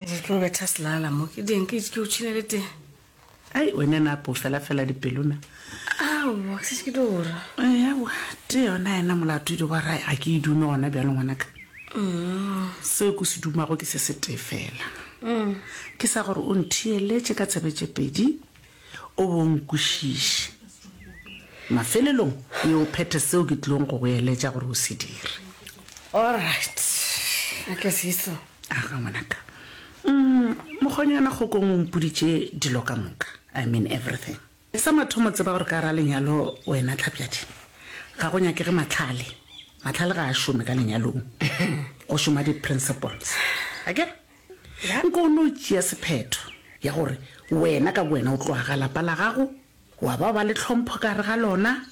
Ke tlo betha selala mo ke ding ke itse ke o tšhine le teng. Ai wena na po fela fela dipelo na. Aowa ke se ke tlo ora. Ewa te yona yena molato di wa rae a ke e dume gona bjalo ngwanaka. Seo ke se dumago ke se se tee fela. Ke sa gore o ntheeletše ka tshebetše pedi O bo nkwešiše. Mafelelong, ye o phethe seo ke tlilego go go eletša gore o se dire. Allright. A ke se iso? Aga, ngwanaka. Umm, mokgonyana kgokong o mpoditše dilo ka moka. I mean everything. Sa mathomo tseba gore ka gare ga lenyalo, wena Tlhapjadi, ga go nyakege mahlale. Mahlale ga a šome ka lenyalong. Go šoma di-principles. Akere? Ge nka o no tšea sephetho ya gore wena ka bowena o tloga ga lapa la gago, wa ba ba le tlhompho ka gare ga lona,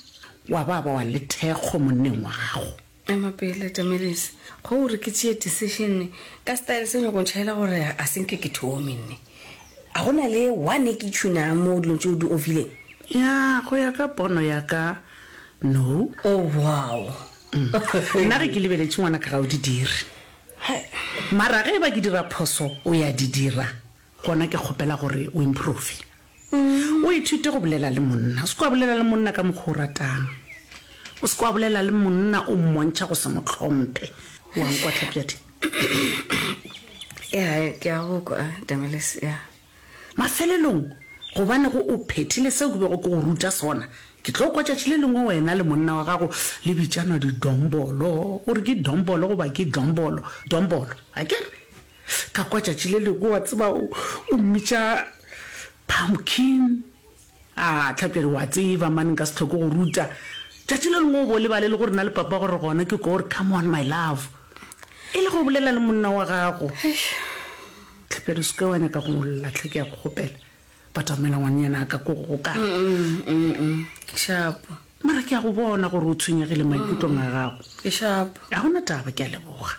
wa ba ba wa le thekgo monneng wa gago. Ema pele, Tamilis. Kgo o re ke tšee decision ka style se o nyako ntšhaela gore ga se nke ke thome nne? A go na le one e ke tšhunang mo dilong tše o di ofileng? Ya, go ya ka pono ya ka, no. Oh, wow. Nna ge ke lebeletše ngwanaka ga o di dire. Mara ge e ba ke dira phoso o ya di dira, gona ke kgopela gore o improve. O ithute go bolela le monna. O se ke wa bolela le monna ka mokgwa o ratang. O se ke wa bolela le monna o mmontšha go se mo tlhomphe. Wa nkwa, Tlhapjadi? Yeah, ke a go kwa, Damelis, yeah. Mafelelong, gobane go o phethile seo ke bego ke go ruta sona, ke tlo kwa tšatši le lengwe wena le monna wa gago le bitšanwa didombolo. O re ke dombolo goba ke dombolo? Dombolo, a ke re? Ka kwa tšatši le lengwe, wa tseba, o, o mmitša pumpkin. A Tlhape re o a tseba man nka se tlhoke go ruta. Tšatši le lengwe o bo lebale le gore na le papa gore gona ke ko re come on my love. E le go bolela le monna wa gago. Tlhape re seke wa nyaka go ngolla tlhe ke ya go kgopela. Batamela ngwannyana ka ko go ka. Ke shapo. Mara ke ya go bona gore o tshwenyegile maikutlong a gago. Ke shapo. Ga gona taba ke ya leboga.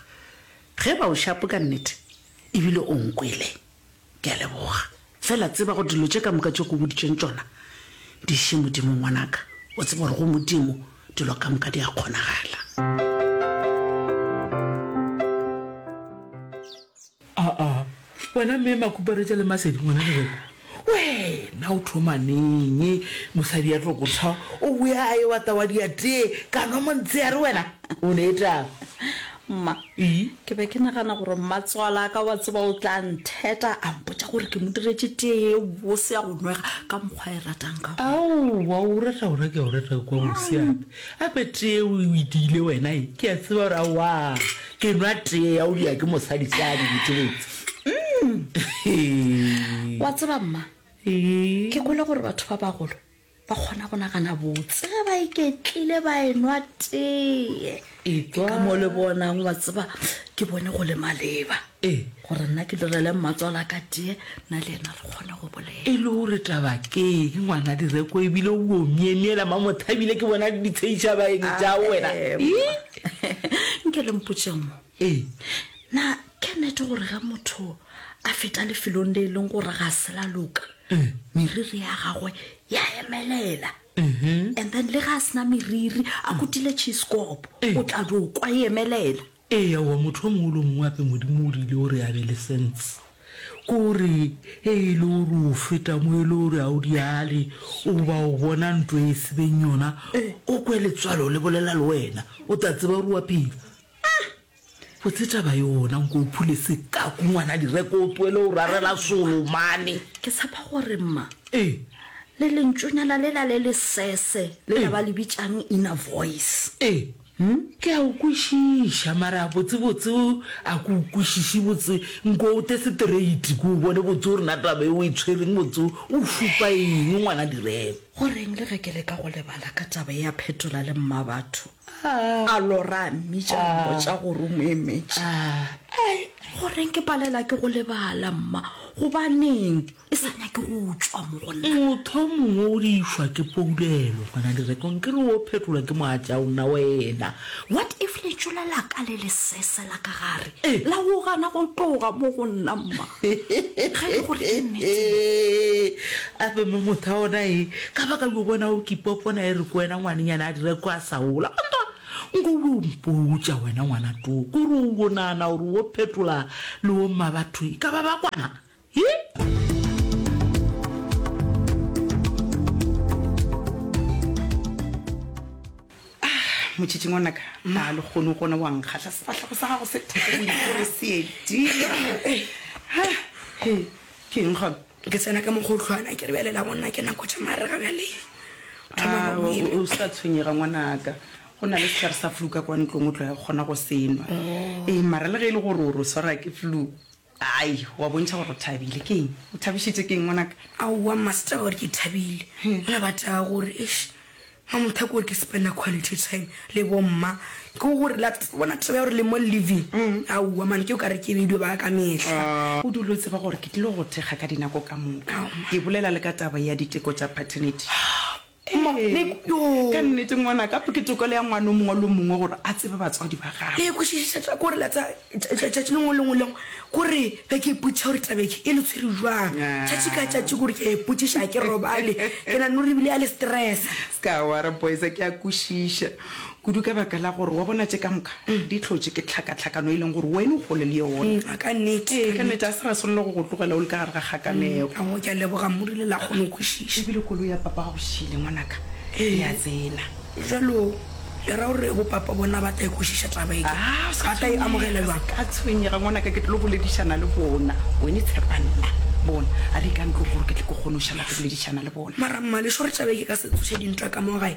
Ge ba o shapo ka nnete ebile o nkwele. Ke a leboga. Fela tseba gore dilo tše ka moka tšeo ke go boditšeng tšona di iše Modimo, ngwanaka. O tseba gore go Modimo dilo ka moka di a kgonagala. Aa, wena Mme Makuparetša le Masedi, ngwanaka wena, wena o thoma neng mosadi ya tlo go tshwa o boya a ewa tawa diatee ka nwa montshehare wena? O ne etang? Mma, Ii, ke be ke nagana gore mmatswala a ka wa tseba o tla ntheta a mpotša gore ke mo diretše tee ye bose ya go nwega ka mokgwa a e ratang ka gona. Aowa, o rata gona ke a o rata go kwa mose gape. Gape tee yeo o e diile wena ye, ke a tseba gore aowaa ke nwa tee ya go diya ke mosadi se a di boteletse. Wa tseba mma, ke kwele gore batho ba bagolo Ba kgona go nagana botse ge ba iketlile ba enwa tee. Ke ka mo le bonang wa tseba ke bone go le maleba gore nna ke direle mmatswala ka tee na le ena re kgone go bolela. E le gore taba ke eng ngwana direko ebile o bo myemyela ma mothabile ke bona ditsheiša baeng ja wena. Nke le mpotše mo. Ee, na ke nete gore ge motho a feta lefelong le e leng gore ga se la loka meriri ya gagwe ya emelela and then le ga a sena meriri a kutile cheesekopo o tla do kwa e emelela ee aowa motho o mongwe le o mongwe ape modimo o rile o re a be le sense ko re e e le o re o feta mo e le o re a o diale o ba o bona ntlo e sebeng yona o kwe letswalo le bolela le wena o tla tseba o re wa phela Uhm! Botse taba yona nko o phule sekaku ngwana direko o tloele o rarela solo mane. Ke tshepa gore mma Ee. le lentšonyana lela le lesese le la ba le bitšang inner voice. Ee. Uhm? Ke a o kwešiša mara botsebotse a ke o kwešiše botse nko o te straight ke o bone botse gore na taba e o e tshwereng botse o šupa eng ngwana direko. Go reng le ge ke leka go lebala ka taba e ya phetola le mmabatho? A Lora a mmitša a mmotša gore o mo emetše. Ai, goreng ke palela ke go lebala, mma? Gobaneng e sa nyake go tšwa mo go nna? Motho o mongwe o dišwa ke poulelo, ngwana Direko, nke le o phetolwa ke moatša o nna wena. What if letšola la ka le lesese la ka gare? La go gana go tloga mo go nna, mma, ge e le gore ke nnete. A be mo motho a ona e ka ba ka yo bona o kipa kona e re ko wena ngwanenyana a dire ko a sa ola. Mantwa, nko o o mpotša wena ngwana too, ko re o o nana gore o phetola le o mma batho e ka ba ba kwana? motšhitšhi ngwanaka ga le kgone go gona wa nkgatlha sefatlhago sa gago se theoseedi ke eng gona ke tsena ka mokgotlhwana ke re bjalela gonna ke nako tša marega bjale o sa tshwenyega ngwanaka go na le setlhare sa flu ka kwa ntlong o tlo ya kgona go senwa oh. ee mara le ge e le gore o ro swara ke flu Ai, o a bontšha gore o thabile. Ke eng? O thabišitše ke eng, ngwanaka? Aowa, mma, se taba gore ke thabile. Nna ba taba gore, eish, mma, mothako gore ke spenda quality time le bomma. Ke go relax, o bona taba ya gore le mo living, aowa man, ke o ka re ke bedio ba ka ka mehla. O dule o tseba gore ke tlile go go thekga ka dinako ka moka. Ke bolela le ka taba ya diteko tša paternity. Ee, ka nnete, ngwanaka, ke tokelo ya ngwana o mongwe le o mongwe gore a tsebe batswadi ba gagwe. Ee, kwešišetša kore la tsa tšatši lengwe le ngwe lengwe kore be ke ipotšiša gore tabeke e le tshwere jwang tšatši ka tšatši kore ke a ipotšiša ga ke robale ke na no re bile ya le stressa. Ska wara boys ke a kwešiša Kudu ka baka la gore, wa bona, tše ka moka di hlotše ke tlhakatlhakano e leng gore wene o kgole le yona. Ee, a ka nnete. A ka nnete, ga se ra swanela go go tlogela o le ka gare ga kgakanego. Ka goo, ke a leboga, mo rile la kgona go kwešiša. E bile koloi ya papa ga go šele, ngwanaka, e a tsena. Bjalo, le ra gore bo papa bona ba tla e kwešiša taba ye? Ke re, ba tla e amogela bjang? O se ka tshwenyega, ngwanaka, ke tlilo boledišana le bona. Wene tshepa nna. Bona, a re ye ka ntlong gore ke tle ke kgone go šala ke boledišana le bona. Mara, Mmalešo, re tšabe ke ka se tsoše dintwa ka mo gae.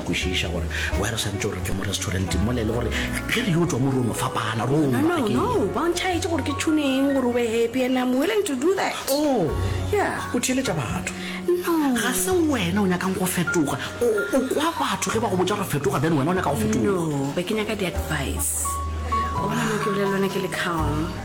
kwešiša gore wa re swantse gore ke mo restauranteng mola e le gore ge re yo tswa mo rono fapana ronontšhaetse gore ke tshune eng gore o be happy and im willing to do that o oh. yeah. o theeletša batho ga se wena o nyakang go fetoga o kwa batho ge ba go botsa go fetoga then wena o nyaka go fetoga be ke nyaka di-advice obanokebile lone ke le calm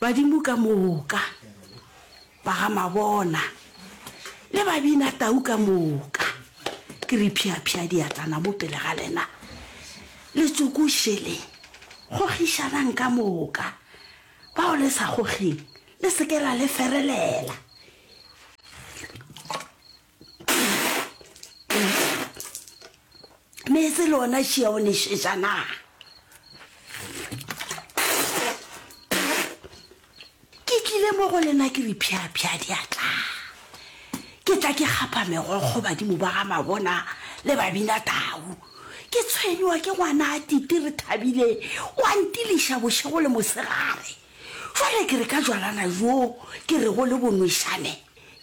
Badimo ka moka, ba ga Mabona, le babina tau ka moka, ke re phiaphia diatlana mo pele ga lena, le tsokošeleng, gogišanang ka moka, bao le sa gogeng, le se ke la le ferelela. meetse le ona šia o nešeša na ke tlile mo go lena ke re phiaphia di a tla ke tla ke gapa megokgo badimo ba ga mabona le babina tau ke tshwenywa ke ngwana a tite re thabile wa ntiliša bošego le mosegare jale ke re ka jwalana jo ke re go le bonwešane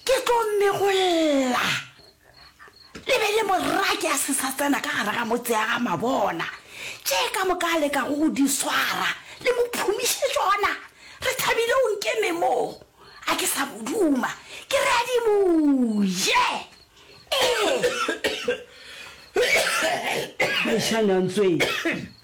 Ke tlo mego lla. Le be le morake a se sa tsena ka gare ga motse ya ga mabona. Tše ka moka a leka go go di swara. Le mo phumiše tšona. Re thabile o nkeme mo. A ke sa mo duma. Ke re a di mo je. Mošana Ntsweng,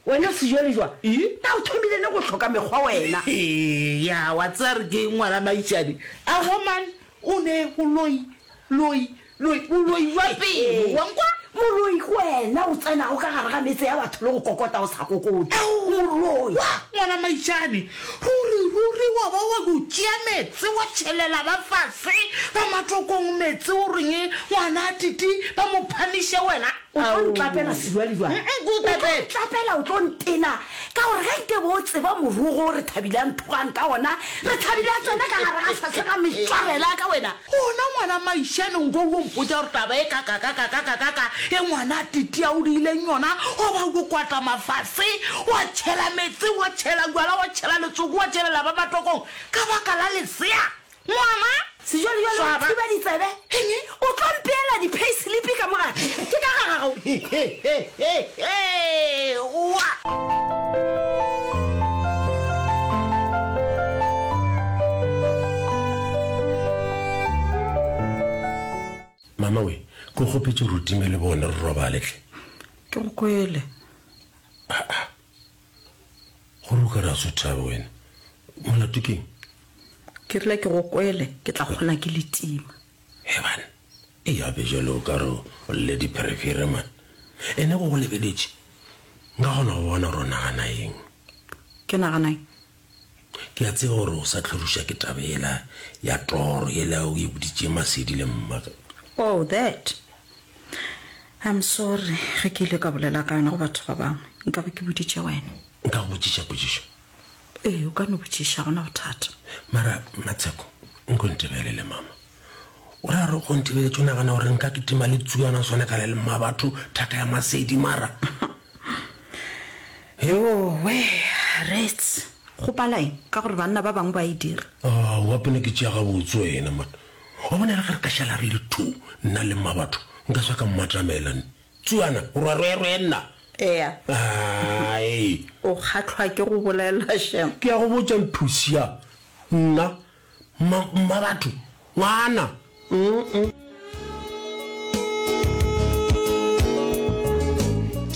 wena sejwalejwa na o thomile le go hloka mekgwa wena? Eya, wa tseba re ke ngwana Maitšane. A woman o ne boloi, loi, loi, boloi jwa pelo, wa nkwa? Moloi ke wena o tsenago ka gare ga metse ya batho le go kokota o sa kokoti. Moloi! Wa ngwana Maitšane, Ruri, ruri wa ba wa go tšea meetse wa tšhelela ba fase ba matokong meetse o reng ngwana a titi ba mo phamiše wena? O tlo ntlapela Sedwadi bjang? O tlo ntlapela o tlo ntena ka gore ge nke bo o tseba morogo o re Thabile a nthogang ka ona re Thabile a tsena ka gare ga fase ga metšwabela ka wena. Gona ngwana maišane nko wo mpotša gore taba e kakakakakakakaka e ngwana a titia o diileng yona go ba wo kwata mafase wa tšhela metse wa tšhela jwala wa tšhela letsoko wa tšhelela ba matokong ka baka la lesea ngwana Sejwalejwale o thiba ditsebe. Eng? O tlo mpeela di-payslip ka mo gare? Ke ka garagao. Hee! Oa! Mama we, ko kgopetše gore o time le bone re robale tle. Ke go kwele. Aa. Gore o ka ra so thabe wena. Molato keng? Ke rile ke go kwele, ke tla kgona ke le tima. He bana. E gape bjalo o ka re o lle dipherefere, man. E ne go go lebeletše. Nka kgona go bona gore o nagana eng. Ke nagana eng? Ke a tseba gore o sa hlorišwa ke taba yela ya toro yela o e boditše Masedi le mma. Oh, that. I'm sorry ge ke ile ka bolela ka yona go batho ba bangwe. Nka be ke boditše wena. Nka go botšiša potšišo? Ee, o ka no botšiša, ga go na bothata. Mara, Matsheko, nko ntebelele, mama. O ra re go nthebeletše o nagana gore nka kitima le tsuana swane ka le le mma batho thaka ya masedi mara eowe rets go palaeng ka gore banna ba bangwe ba e dira ah, wa pele ke tšea gabotse wena man wa bona re ga re ka šala re le two nna le mma batho nka sa ka mmatamelane tsuana o ra rwerwe nna ea o kgatlhwa ke go bolela shem ke ya go botsa nthusia nna Mmabatho, ngwana.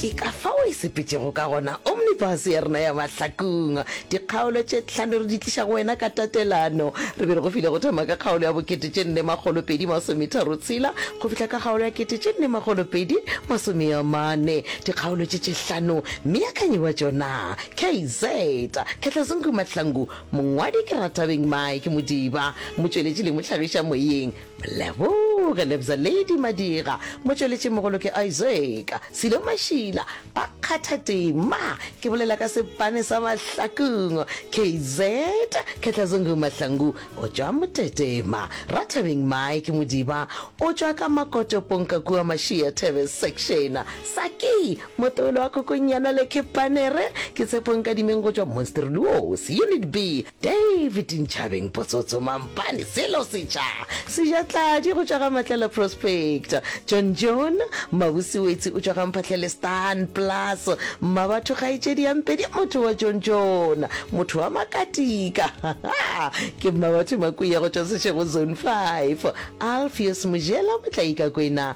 Ke ka fao e sepetšego ka gona omnibus ya rena ya mahlakong. Dikgaolo tše tlhano re di tliša go wena ka tatelano. Re be re go file go thoma ka kgaolo ya bokete tše nne makgolo pedi masometharo tshela go fihla ka kgaolo ya kete tše nne makgolo pedi masomeamane. Dikgaolo tše tše hlano, Meakanyi wa tšona, KZ, Khetlazungu Mahlangu, Mongwadi ke Ratabeng Mike Modiba, motšweletši le mohlagiša moyeng Moleboge Lebza Lady Madira, motšweletši mogolo ke Isaac Silo Mašila, ba kgatha tema, ke bolela ka sepane sa Mahlakong, KZ Khetlazungu Mahlangu o tšwa Motetema, Ratabeng Mike Modiba o tšwa ka Makoto Ponkakua Mašia Thebe Section, Saki Motolo wa Kgokonyana le Khepanere ke Tshepo Nkadimeng go tšwa Monsterluos, Unit B, David Ntšhabeng Potsotso Mampane, Sello Setša Sejatladi go tšwa ga Matlala Prospect, John John Mabuse Wetsi o tšwa ga Mphahlele Stan Plus, Mmabatho Kgaetšedi ya Mpedi Motho wa John John Motho wa Makatika hahaa ke Mmabatho Makuya go tšwa Seshego Zone Five, Alpheus Mojela Motlaikakwena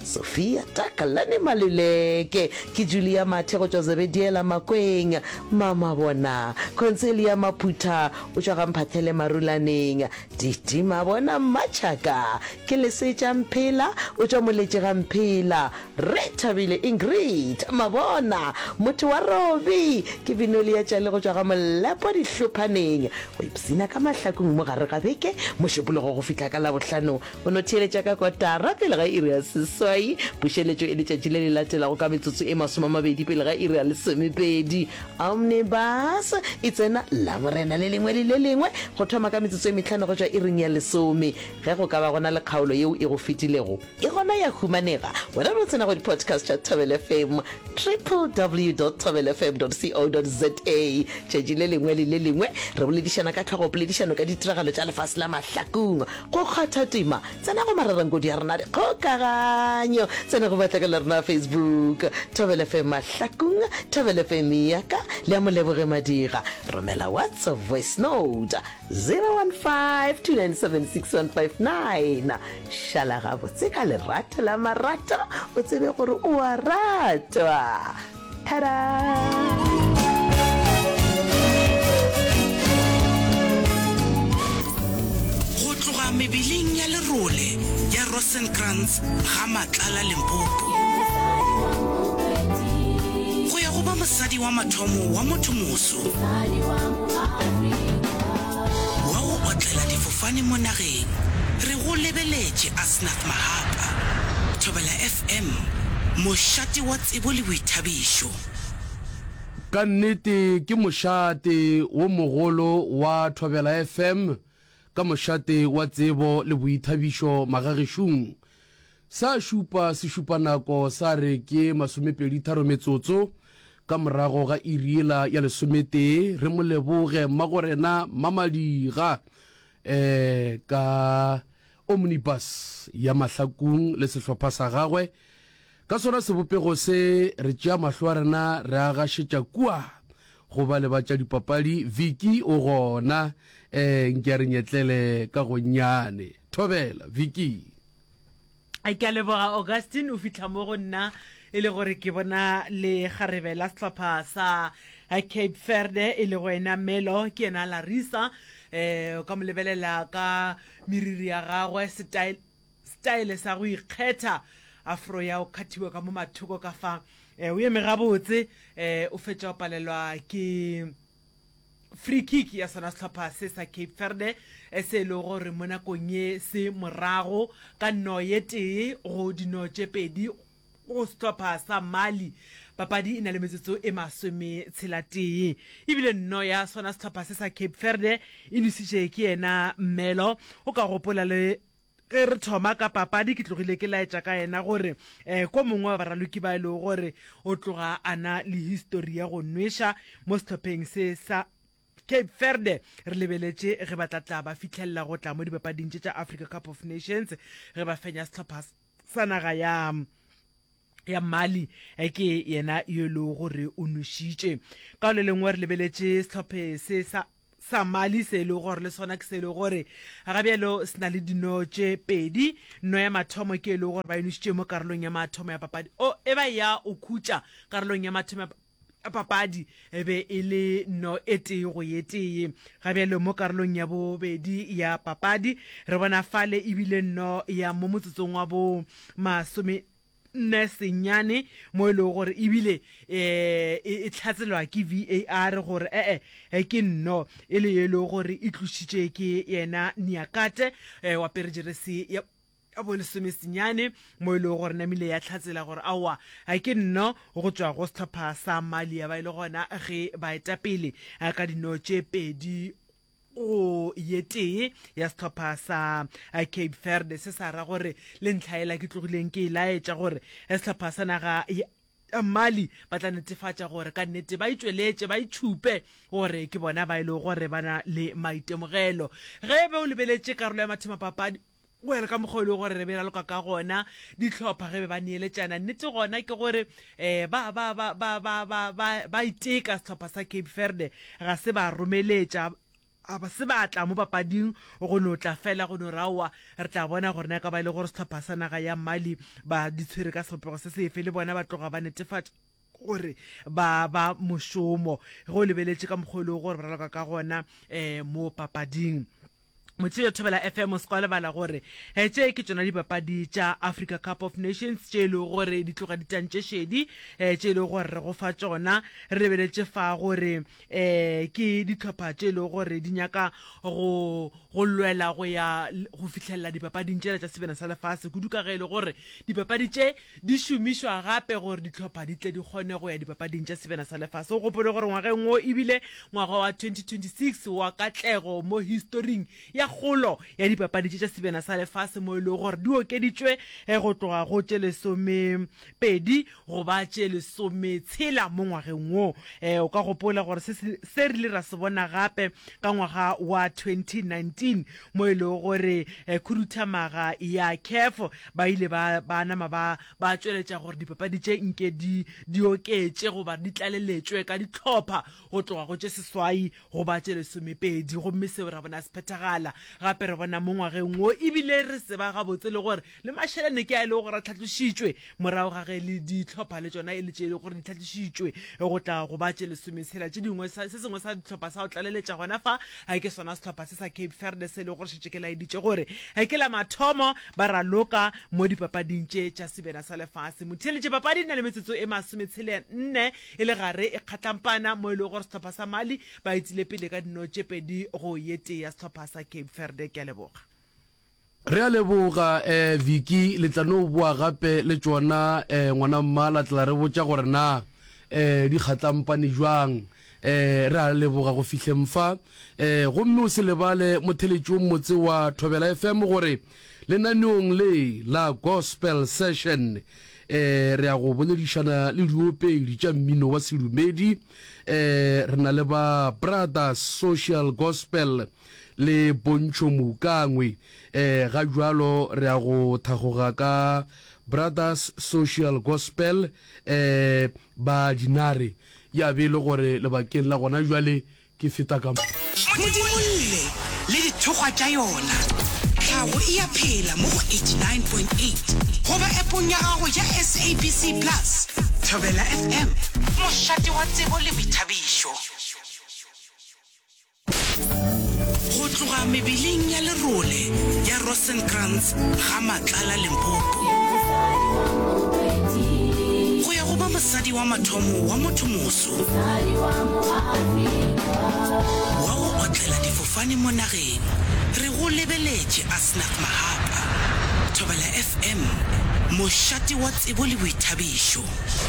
Sophia Takalane Maluleke, ke Julia Mathe go tšwa Zebediela Makweng, Mama Bona, Concelia Maphutha o tšwa Gamphathele Marulaneng, Titi Mabona Mmatšhaka, ke Lesetša Mphela o tšwa Moletše ga Mphela, Rre Thabile Ingrid Mabona, motho wa Robi, ke Binolia Tšale go tšwa ga Molepo Dihlophaneng, go ipshina ka Mahlakong mo gare ga beke, Mošupologo go fihla ka Labohlano O no theeletša ka kotara pele ga iri ya seswai. Pušeletšo e letšatši le le latelago ka metsotso e masomamabedi pele ga iri ya lesomepedi. Omnibus e tsena Laborena le lengwe le le lengwe go thoma ka metsotso e mehlano go tšwa iring ya lesome. Ge go ka ba go na le kgaolo yeo e go fetilego, e gona ya humanega wena o no tsena go di-podcast tša Thobela FM, www dot thobelafm dot co dot za. Tšatši le lengwe le le lengwe re boledišana ka tlhogopoledišano ka ditiragalo tša lefase la mahlakong. Go kgwatha tema, tsena go Mararankodi a rena a dikgokaganyo, tsena go batlageli la rena la Facebook, Thobela FM Mahlakung, Thobela FM Iyaka le ya Moleboge Madira. Romela WhatsApp voice note 0152976159. Šala gabotse ka lerato la marato o tsebe gore o a ratwa. Go tloga mebeleng ya lerole ya Rosenkrantz ga Matlala Limpopo, go ya go ba mosadi wa mathomo wa motho moso wa go otlela difofane mo nageng, re go lebeletše Asnath Mahapa, Thobela FM, mošate wa tsebo le boithabišo. Ka nnete ke mošate wo mogolo wa Thobela FM ka mošate wa tsebo le boithabišo magagešung. Sa šupa sešupanako sa re ke masomepeditharo metsotso ka morago ga iri yela ya lesometee. Re mo leboge Mmagorena Mmamadiga um ka Omnibus ya Mahlakung le sehlopha sa gagwe. Ka sona sebopego se, re tšea mahlo a rena re a gašetša kua go bale ba tša dipapadi. Vicky o gona? Ee, nke a re nyetlele ka gonnyane. Thobela, Vicky. Ke a leboga, Augustine. O fihla mo go nna e le gore ke bona lekgarebe la sehlopha sa Cape Verde e lego ena Melo, ke yena Larissa. Um, o ka mo lebelela ka meriri ya gagwe, style. Style sa go ikgetha. Afro ya o khathiwa ka mo mathoko ka fa. Eh, o eme gabotse. Eh, o fetša o palelwa ke free kick ya sona sehlopha se sa cape verde eh, se e lego gore mo nakong ye se morago ka nno ye tee go dino tše pedi go sehlopha sa mali papadi e na le metsotso e masome tshela tee ebile nno ya sona sehlopha se sa cape verde e dusitše ke yena mmelo o ka gopola le Ge re thoma ka papadi ke tlogile ke laetša ka yena gore eh, ko mongwe wa baraloki ba e lego gore o tloga a na le histori ya go nweša mo sehlopheng se sa Cape Verde re lebeletše ge ba tla tla ba fitlhelela go tla mo dipapading tše tša Africa Cup of Nations ge ba fenya sehlopha sa naga ya ya Mali eh, ke yena yo e lego gore o nwešitše ka o le lengwe re lebeletše sehlophe se sa Sa mali se e lego gore le sona ke se e lego gore ga bjalo se na le dino tše pedi. No ya mathomo ke e lego gore ba e nošitše mo karolong ya mathomo ya papadi. O e ba ya o khutša karolong ya mathomo ya papadi e be e le no e tee go ye tee. Ga bjalo mo karolong ya bobedi ya papadi re bona fale e bile no ya mo motsotsong wa bo masome nne senyane mo e lego gore ebile um e tlhatselwa ke var gore ee eh, ke nno e le ye lego gore e tlošitše ke yena niakate um wa perejeresi ya ya bolesome senyane mo e lego gore namile ya tlhatsela gore aowa ga ke nno go tšwa go setlhopha sa malia ba e le gona ge baetapele ka dino tše pedi go ye tee ya setlhopha sa eh, cape verde se sa ra gore le ntlhaela ke tlogileng ke e laetša gore eh, setlhopha sa naga ya mali ba tla netefatša gore ka nnete ba itšweletše ba itšhupe gore ke bona ba e lego gore ba na le maitemogelo ge be o lebeletše karolo ya mathemapapadi Well, ka mokgwa o e lego gore re be ra loka ka gona, dihlopha ge be ba neeletšana, nnete gona ke gore um ba, ba, ba, ba, ba, ba, ba, ba iteka sehlopha sa Cape Verde, ga se ba romeletša, ga se ba tla mo papading go no tla fela go no re aowa re tla bona gore na e ka ba e le gore sehlopha sa naga ya Mali ba di tshwere ka sebopego se sefe, le bona ba tloga ba netefatša. gore ba ba mošomo ge o lebeletše ka mokgwa o lego gore ba raloka ka gona um mo papading motse yo thobela fm o se ka lebala gore um tše ke tšona dipapadi tša africa cup of nations tše e lego gore di tloga ditantšešedi um tše e lego gore re go fa tšona re lebeletše fa gore um ke dihlopha tše e lego gore di nyaka go go lwela go ya go fitlhelela dipapading tšela tša sebena sa lefase kudu ka ge e le gore dipapadi tše di šomišwa gape gore dihlopha di tle di kgone go ya dipapading tša sebena sa lefase o gopole gore ngwageng o ebile ngwaga wa 2026 wa katlego mo historing ya kgolo ya dipapadi tše tša sebena sa lefase mo e lego gore di okeditšwe eh, go tloga go tše lesome Pedi go ba tše lesometshela mo ngwageng wo. E, o ka gopola gore se se rile ra se bona gape ka ngwaga wa 2019 mo e lego gore e, khuduthamaga ya CAF ba ile ba ba nama ba ba tšweletša gore dipapadi tše nke di di oketše goba di tlaleletšwe ka dihlopha go tloga go tše seswai go ba tše lesomepedi. Gomme seo ra bona se phethagala gape re bona mo ngwageng wo ebile re tseba gabotse le gore Le mašelene ke a e lego gore a tlhatlošitšwe morago ga ge le dihlopha le tšona e le tše e lego gore di tlhatlošitšwe go tla go ba tše lesometshela tše dingwe. Se sengwe sa dihlopha sa go tlaleletša gona fa ke sona sehlopha se sa Cape Verde se e lego gore šetše ke laeditše gore ke la mathomo ba raloka mo dipapading tše tša sebena sa lefase. Motheeletše papadi e na le metsotso e masometshele-nne e le gare e kgatlampana mo e lego gore sehlopha sa Mali ba etile pele ka dino tše pedi go ye tee ya sehlopha sa Cape Verde. Ke a leboga. Re a leboga eh Vicky, le tla no boa gape le tšona eh ngwana mma la tla re botša gore na eh di kgatlampane bjang eh re a leboga go fihleng fa eh gomme o se lebale motheletšong motse wa Thobela FM gore lenaneong le la Gospel Session eh re a go boledišana le diopedi tša mmino wa sedumedi eh re na le ba Brothers Social Gospel le pontšho moukangwe e ga jwalo re a go thagoga ka Brothers Social Gospel e ba dinare ya be le gore lebakeng la gona jwale ke feta ka Modimolle le dithokgwa tša yona. Tlhago e a phela mo go 89.8 goba appong ya gago ya SABC Plus, Thobela FM, mošate wa tsebo le boithabišo. Go tloga mebeleng ya lerole ya Rosenkrantz ga Matlala Limpopo, go ya go ba mosadi wa mathomo wa motho moso wa go otlela difofane mo nageng, re go lebeletše Asnath Mahapa, Thobela FM, mošate wa tsebo le boithabišo.